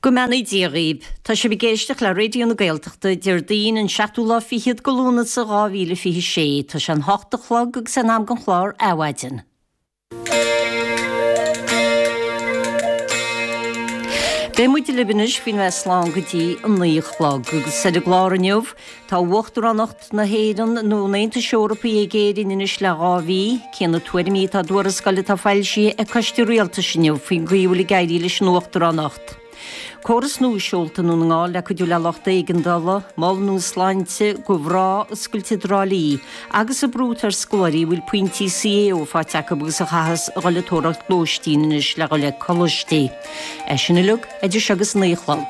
Go mbeannaí Dia dhaoibh. Tá sibh ag éisteacht le Raidio na Gaeltachta, Déardaoin, an seachtú lá fichead go Lúnasa, dhá mhíle fiche sé. Tá sé an hocht a chlog agus é in am don chlár Adhmhaidin. Beidh muid libh anois faoina bheith slán go dtí an naoi a chlog, agus ar an gclár inniu, tá Uachtaránacht. na hÉireann nó an Aontais Eorpaigh ag Éirinn anois le dhá mhí. Cé na tuairimí atá i dtuarascáil atá foilsithe ag coiste rialtais inniu faoin gcaoi a bhfuil ag éirí leis an uachtaránacht? Córas nua seolta nó na ngáil le cuidiú le lucht éigeandála? Mol nua sláinte? dhá oscailt i dTrá Lí? Agus an brú atá ar scoláirí a bhfuil pointí CAO faighte acu agus a chaithfeas a dhul ag tóraíocht lóistín anois le dhul ag coláistí? É sin uilig idir seo agus a naoi a chlog.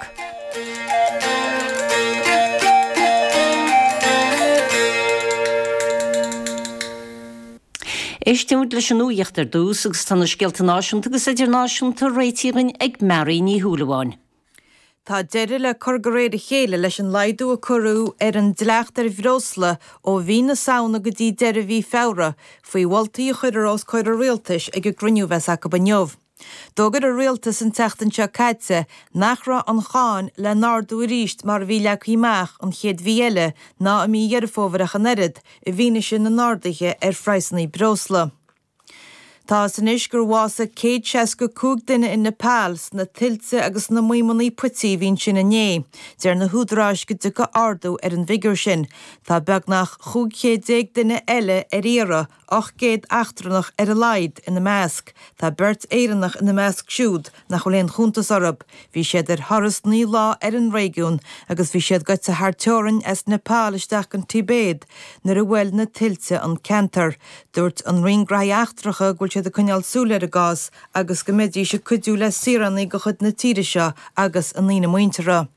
Éistimid leis an nuacht ar dtús agus tá na scéalta náisiúnta agus idirnáisiúnta réitithe againn ag Mary Ní Shúilleabháin. Tá deireadh le cur de réir a chéile leis an laghdú a cuireadh ar an dleacht ar bhreosla ó mhí na Samhna go dtí deireadh mhí Feabhra, faoi mholtaí a chuirfear os comhair an Rialtais ag an gcruinniú a bheas acu inniu. D'fhógair an rialtas an tseachtain seo caite nach raibh an cháin le n-ardú arís mar a bhí leagtha amach an chéad mhí eile ná i mí Dheireadh Fómhair ach an oiread, i bhfianaise na n-arduithe ar phraghsanna breosla. Tá's anois gur bhásaigh céad seasca cúig duine in Nepal sna tuilte agus sna maidhmeanna puití a bhí ansin inné. Deir na húdaráis go dtiocfaidh ardú ar an bhfigiúr sin. Tá beagnach chúig chéad déag duine eile ar iarraidh. 800 eachtrannach ar a laghad ina measc. Tá beirt Éireannach ina measc siúd nach bhfuil aon chuntas orthu. Bhí siad ar thuras naoi lá ar an réigiún agus bhí siad gaibhte thar teorainn as Nepal isteach don Tibéid nuair a bhuail na tuilte an ceantar. Dúirt an Roinn Graithí Eachtracha go bhfuil siad ag coinneáil súil ar a gcás agus go mbeidís ag cuidiú le saoránaigh de chuid na tíre seo agus a ndaoine muinteartha.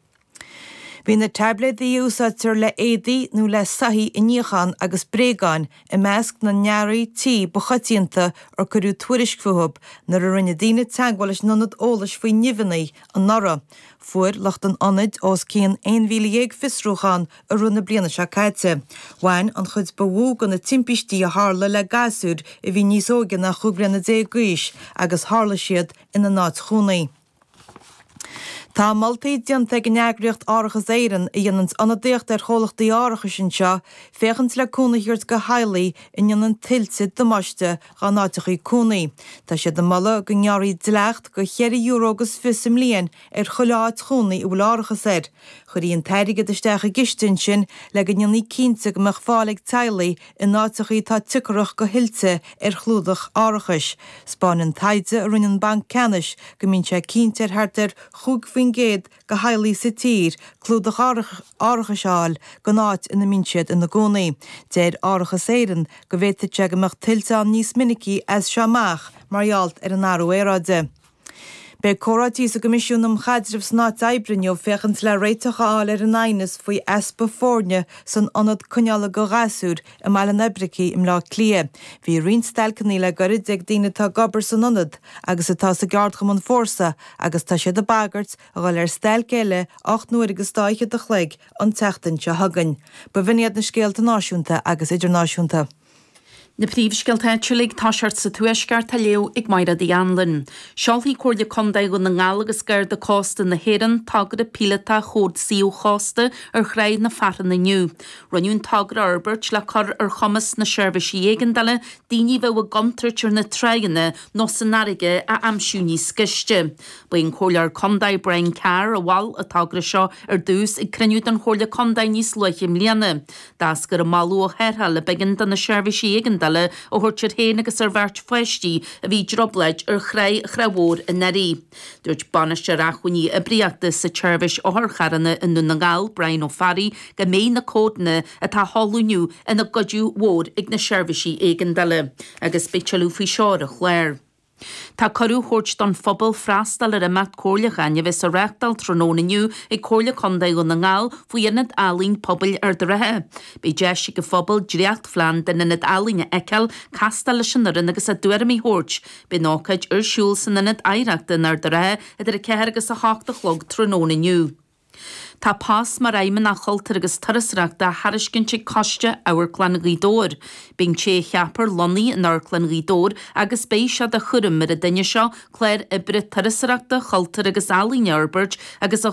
Bhí na taibléadaí a úsáidtear le héadaí nó le soithí a níochán agus bréagáin i measc na n-earraí tí ba choitianta ar cuireadh tuairisc fúthu nuair a rinne daoine teagmháil leis an Ionad Eolais faoi Nimheanna anuraidh. Fuair lucht an Ionaid os cionn 11,000 fiosrúchán i rith na bliana seo caite. Bhain an chuid ba mhó de na timpistí a tharla le gasúir a bhí níos óige ná chúig bliana déag d'aois agus tharla siad ina n-áit chónaí. Tá moltaí déanta ag an eagraíocht Árachas Éireann, a dhéanann ionadaíocht ar chomhlachtaí árachais anseo, féachaint le cúnamh a thabhairt do theaghlaigh a ndéanann tuilte damáiste dá n-áiteachaí cónaí. Tá siad ag moladh go ngearrfaí dleacht de cheithre euro agus fiche sa mbliain ar chuile áit chónaí a bhfuil árachas air. Chuirfí an t-airgead isteach i gciste ansin le go ndéanfaí cinnte go mbeadh fáil ag teaghlaigh In áiteachaí atá tograch go thuilte ar chlúdach árachais. Spáin an taighde a rinne an Banc Ceannais go mbíonn sé cinnte ar thart ar 5% de theaghlaigh sa tír clúdach árachais a fháil gon áit ina mbíonn siad ina gcónaí. Deir Árachas Éireann go bhféadfadh sé go mbeadh tuilte ann níos minicí as seo amach mar gheall ar an athrú aeráide. Beidh comhráití sa gCoimisiún um Chaidreamh san Áit Oibre inniu féachaint le réiteach a fháil ar an aighneas faoi easpa foirne san ionad coinneála do ghasúir i mBaile an Oibricigh i mBleá Cliath. Bhí roinnt stailceanna le goirid ag daoine atá ag obair san ionad agus atá sa gceardchumann Fórsa agus tá siad ag bagairt a dhul ar stailc eile ocht n-uaire agus dá fhichead a chloig an tseachtain seo chugainn. B'in iad na scéalta náisiúnta agus idirnáisiúnta. Na príomhscéalta áitiúla, toiseacht sa Tuaisceart á léamh ag Máire Uí Anluain. Seolfaidh Comhairle Contae Dhún na nGall agus Garda Cósta na hÉireann togra píolótach Chód Suíomh Chósta ar Thráigh na Fearthann inniu. Rinneadh an togra a fhorbairt le cur ar chumas na Seirbhísí Éigeandála daoine a bheadh i gcontúirt ar na tráigheanna nó san fharraige a aimsiú níos gaiste. Ba é an Comhairleoir Contae Brian Carr a mhol an togra seo ar dtús ag cruinniú den Chomhairle Contae níos luaithe i mbliana. D'eascair an moladh ó tharrtháil a b'éigean do na seirbhísí éigeandála a thabhairt air féin agus ar bheirt pháistí a bhí i dtrioblóid ar thráigh Thráigh Mhór anuraidh. Dúirt Bainisteoir Acmhainní Oibríochta sa tSeirbhís Otharcharranna i nDún na nGall, Brian Ó Fearraigh, go mbeidh na códanna atá á seoladh inniu ina gcuidiú mhór ag na seirbhísí éigeandála agus beidh tuilleadh faoi seo ar an chlár. Tá cuireadh á thabhairt don phobal freastal ar imeacht comhairliúcháin a bheas á reáchtáil tráthnóna inniu ag Comhairle Contae Dhún na nGall faoi Ionad Ealaín Pobail Ard a' Rátha. Beidh deis ag an phobal dréachtphlean den Ionad Ealaín a fheiceáil, castáil leis an fhoireann agus a dtuairimí a thabhairt. Beidh an ócáid ar siúl san Ionad Oidhreachta in Ard a' Rátha idir 4 agus 8 a chlog tráthnóna inniu. Tá post mar Fheidhmeannach Cultúir agus Turasóireachta á thairiscint ag Coiste Amharclann Ghaoth Dobhair. Beidh an té a cheapfar lonnaithe in Amharclann Ghaoth Dobhair agus beidh sé de chúram ar an duine seo clár oibre turasóireachta, cultúir agus ealaíon a fhorbairt agus a